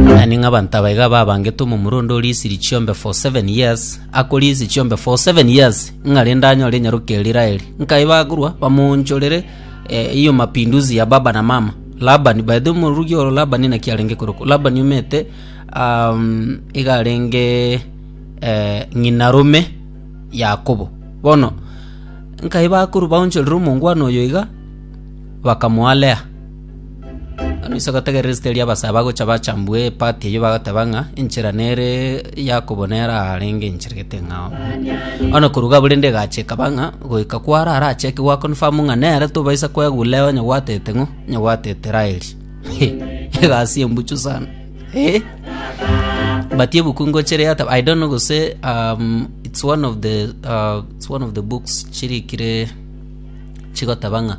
Yaani ng'a abanto aba iga babangete omomura onde orisirie chiombe for seven years akorisia chiombe for seven years ng'a rende anyore enyaroke eria Raeli nkaye bakorwa bamoonchorere eh, hiyo mapinduzi ya baba na mama Labani by the way omorugi oro Labani naki arenge korokwa Labani omete um, iga arenge eh, ng'ina rome Yakobo bono nkaye bakorwa baonchorere omongwana oyo iga bakamoa Lea Ase ogotegerera esegi ri'abasae bagocha bacha mbwe epati eyio bagateba ng'a enchera nere Yakobo nere arenge enchera gete ng'a oo. Bono nakoruga abwo rende egacha ekaba ng'a goika kwaro arachake goaconfirm ng'a nere tobaisa kwegwa Leo onye gwatete ng'o? Onye gwatete Raeli. Egasi embuchu sana. Eh! But ebuku ngochire yateba I don't know gose um, it's one of the uh, it's one of the books chirikire chigoteba ng'a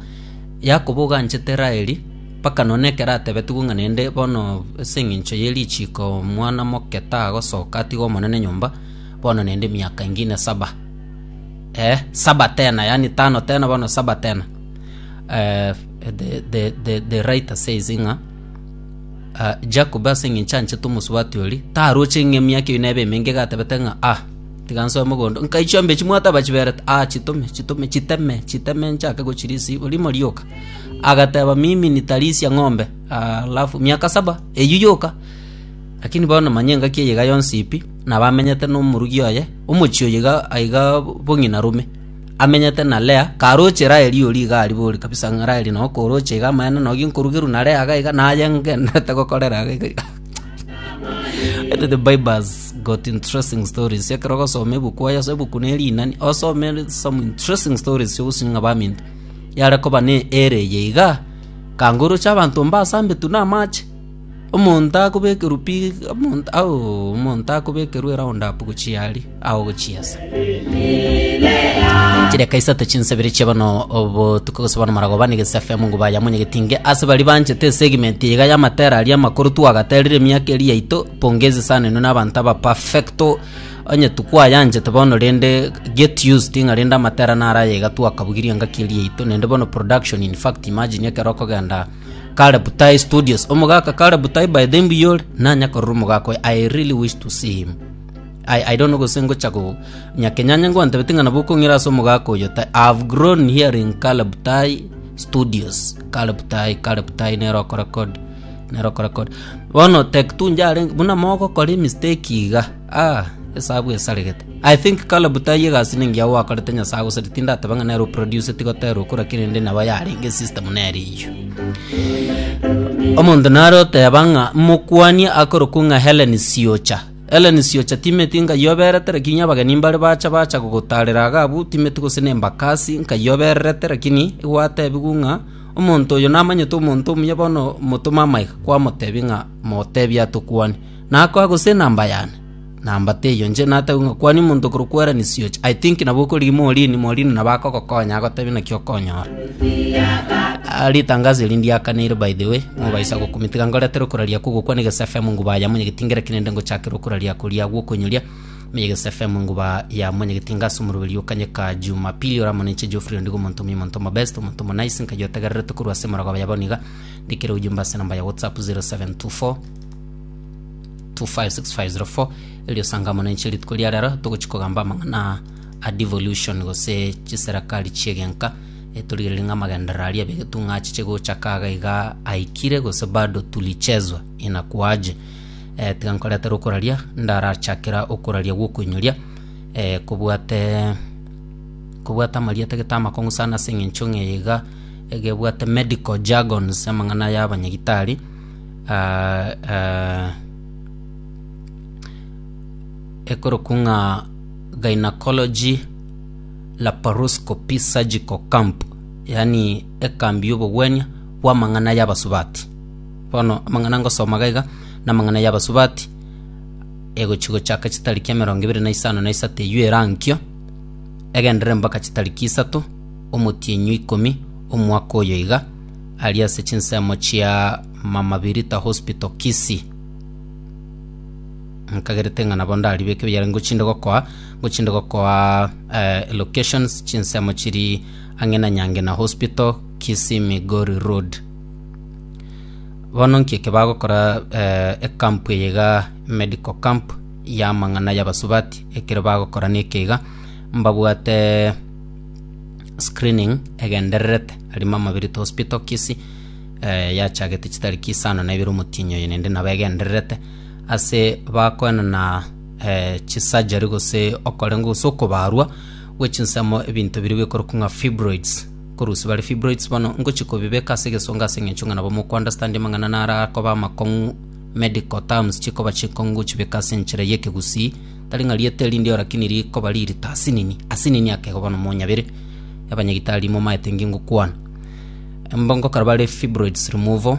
Yakobo oganchete Raeli, mpaka none ekero atebetigwe ng'a naende bono ase engencho ye richiko omwana moke tagosoka atige Omonene nyomba, bono naende emiaka engine saba, eh, saba tena, yaani tano tena bono saba tena. Eh, the, the, the, the writer says ng'a ah, Jacob ase engencho anchete omosubati oria, taroche ng'a emiaka eyo nebe emenge iga atebete ng'a ah, Tiga nsoe mogondo, nkai chiombe echi mwataba chiberete? Aa, chitome, chitome, chiteme, chiteme nchake gochirisia igoro imo rioka. Agateba, Mimi nitarisia ng'ombe. Aa, alafu miaka saba, eyio yoka. Lakini bono manya engaki eye iga yonsi pi, nabo amenyete nomorugi oye, omochie oye iga aiga bong'ina rome. Amenyete na Lea, karoche Raeli oria iga aria bori kabisa, ng'a Raeli noo koroche iga amaene nogi nkorugerwa na Lea iga iga, naye ngendererete gokorera iga iga. Ete the bible has got interesting stories ekero ogosoma ebuku aya ase ebuku na erinani osome some interesting stories ase ogosuka ng'a baminto yare koba ne ere eye iga kangoroche abanto mba asambetu na amache omonto akobekerwa pi omonto auo omonto akobekerwa eround up gochia aria Agwo gochia ase chidakika isato chinsebere chia bono obotuko gose bono maragoba nigo ase FM Nguba ya Munyi Getinge ase bari banchete esegment iga ya matera aria amakoro twagaterire emiaka eri yaito pongezi sana inwe nabanto aba perfecto onye tukwayanchete bono rende get used ng'a rende amatera naro aya iga twakabugirie engaki eri yaito naende bono production in fact imagine ekero okogenda kare butai studios omogaka kare butai by then mbuya ore nanya korora omogaka oyo I really wish to see him I don't know gose ngocha go nyakenyanya ngwantabete ng'a nabo okong'ira ase omogaka oyo ta I have grown hearing Caleb Tai Studios Caleb Tai Caleb Tai nero okorecord nero okorecord bono Tech Two njarenge buna mogokora emistake iga ah esabu esaregete I think Caleb Tai egasi nengiya gwakorete Nyasaye agosarete tindateba ng'a nere oproduce tiga oterwe kora kera ende nabo yarenge system nere eyio omonto nare oteba ng'a mokwanie akorokwa ng'a Hellen Siocha Ellen siocha timeti nkayioberete, lakini abageni mbare bacha bacha gogotaarera iga abwo, timeti gose nembakasi nkayiobererete, lakini igwatebiwu ng'a omonto oyo namanyete omonto omuya bono motome amaiga kwamotebi ng'a motebie atokwane. Nakoa gose enamba yane? Namba teiyo nche natebiwe ng'a kwania omonto okorokwa Ellen siocha. I think nabo okorigia Maureen, Maureen nabo akogokonya agotebi naki okonyora. Ritangazo eri ndiakaneire by the way, mobaisa gokumia tiga ngoretere okoraria kogokwana egesa FM nguba ya monyegeti ngereke nende ngochakera okoraria koria gwokonyoria meye egesa FM nguba ya monyegeti inga ase omoroberi o Kanyeka Jumapili ore amo ninche Geoffrey Ondigo omonto omuya omonto omobest omonto omonice nkayi otegererete korwa ase emerogoba ya bono iga ndikere ojumbe ase enamba ya WhatsApp 0724 256504 erio sanga amo ninche rituko ria rero togochi kogamba amang'ana A devolution gose chiserakari chi'egenka, etorigereria ng'a amagenderero aria b'egetung'a achiche gocha kaga iga aikire gose bado tulichezwa inakuaje. Eh, tiga nkoretere okoraria ndarachakera okoraria gw'okoinyoria eh, kobwate kobwate amaria tagete amakong'u sana ase eng'encho ng'a eye iga egebwate medical jargons amang'ana ya abanyagitari ah, ah, ekorokwa ng'a. Gynecology Laparoscopy Surgical Camp, yaani ekambi y'obogwenia bw'amang'ana y'abasubati. Bono amang'ana ngosoma iga iga, namang'ana y'abasubati egochia gochaka chitariki emerongo ebere na isano na isato eywo erankio, egenderere mpaka chitariki isato omotienyi o ikomi omwaka oyo iga, aria ase chinsemo chia Mama Birita Hospital Kisii. nkagerete ng'a nabo ndaribe ekio biarenge ngochinde gokoa ngochinde gokoa eh, locations chinsemo chiri ang'e na nyangena hospital kisii migori road bono nki eke bagokora eh, ekampu eye iga medical camp y'amang'ana y'abasubati ekero bagokora neke iga mbabwate screening egendererete ari mama birito hospital kisii eh, yachagete chitariki isano na ibere omotienyi oye nende nabo egendererete Ase bakoenana chisajari gose okorengwa gose okobaarwa gwe chinsemo ebinto biria bikorokwa ng'a fibroids. Korusia bare fibroids bono ngochia kobibeka ase egesongo ase eng'encho ng'a nabo moko understand amang'ana naro akoba amakong'u medical terms chikoba chikong'u gochibeka ase enchera ya ekegusii tari ng'a rieta eri ndio lakini rikoba ririto asinini asinini ake igo bono monyabire abanyagitari momaete ngingokwana. Mbongo kare bare fibroids removal.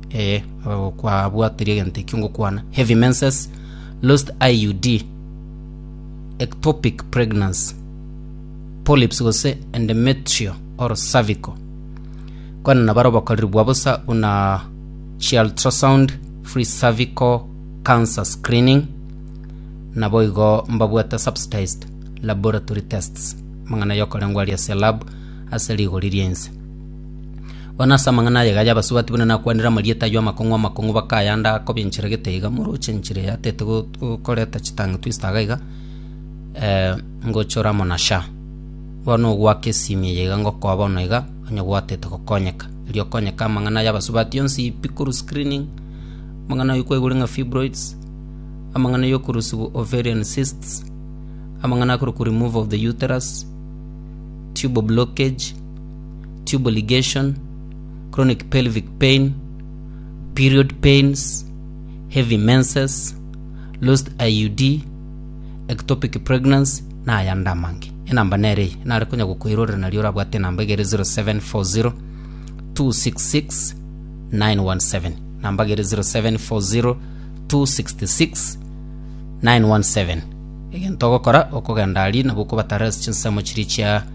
Ee, kwabwatirie egento ekio ngokwana. Heavy menses, lost IUD, ectopic pregnancy, polyps gose endometrial or cervical. Kwana nabare obokoreri bwa bosa buna chi ultrasound, free cervical cancer screening, naboigo mbabwate subsidized laboratory tests, amang'ana yokorengwa aria ase lab ase rigori ri'ense. Bono ase amang'ana aye iga y'abasubati buna nakwanire amarieta ayio amakong'u amakong'u bakayanda kobenchera gete iga moroche enchera eye atete go- go- koreta chitangi twist iga iga ngocha ore amo na sha. Bono ogoaka esimi eye iga ngokoa bono iga onye gwatete gokonyeka. Erio okonyeka amang'ana y'abasubati yonsi pi korwa screening, amang'ana ayio kwaigure ng'a fibroids, amang'ana ya okorusiwu ovarian cysts, amang'ana akorokwa remove of the uterus, tube blockage, tube ligation, chronic pelvic pain, period pains, heavy menses, lost IUD, ectopic pregnancy na ayande amange. Enamba nere eye nare konya gokoirorera nario orabwate enamba egere 0740 266 917 namba egere 0740 266 917 egento ogokora okogenda ari nabo okobatara ase chinsemo chiria chia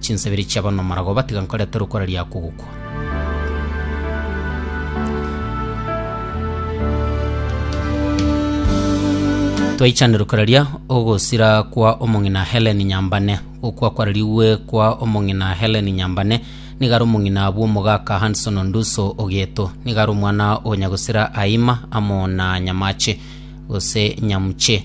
Chinsabiri chiabo nomorago batiga nkorete rokora ria kogokwa. Twaichane rokora ria ogosira kwa omong'ina Helen Nyambane. Gokwa kwararigwe kwa omong'ina Helen Nyambane nigo are omong'ina bw'omogaka Hanson Onduso Ogeto. Nigo are omwana o nyagosira Aima amo na Nyamache gose Nyamuche.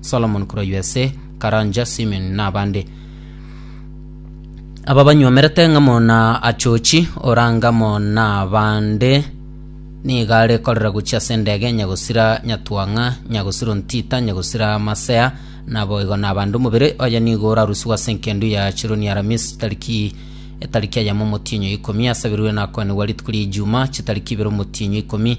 Solomon korwa USA, Karanja Simeon na abande. Aba banywomerete ng'amo na Achochi orangamo na abande nigo are korera gochia ase endege Nyagosira Nyatwang'a, Nyagosiro Ntita, Nyagosira Masea naboigo na abande. Omobere oye nigo orarusigwe ase enkendo ya Chironi Aramisi tariki etariki eyemo omotienyo ikomi, asabirwe na akoanigwa rituko ria Ijuma chitariki ibere omotienyo ikomi,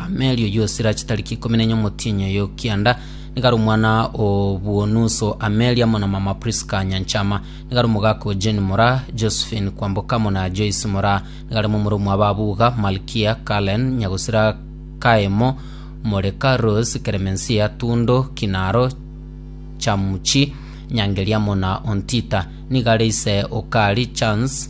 Amelio Yosira chitariki ikomi na enye omotienyi oye o kianda, nigo are omwana o bw'onuso Amelia amo na mama Prisca Nyanchama. Nigo are omogaka o Jane Moraa, Josephine Kwamboka amo na Joyce Moraa. Nigo are momura omwa Babuga, Malkia, Cullen, Nyagosira Kaemo, Moreka, Rose, Clemencia, Tundo, Kinaro, Chamuchi, Nyangeria amo na Ontita. Nigo are ise o Kari, Chance,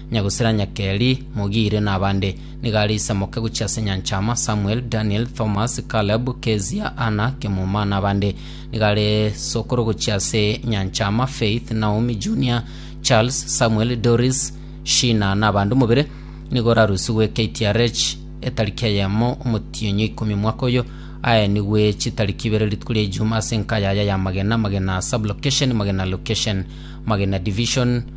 Nyagusera Nyakeri, Mogire, na abande. Nigo are isamoke gochia ase Nyanchama, Samuel, Daniel, Thomas, Caleb, Kezia, Anna, Kemuma, na abande. Nigo are sokoro gochia ase Nyanchama, Faith, Naomi, Junior, Charles, Samuel, Doris, Sheena, na abande. Omobere nigo orarusigwe KTRH etariki eyemo Omotienyo ikomi mwaka oyo. Aenigwe chitariki ibere rituko ria Ijumaa ase enka yaye y'amagena, Magena Sub-Location, Magena Location, Magena Division,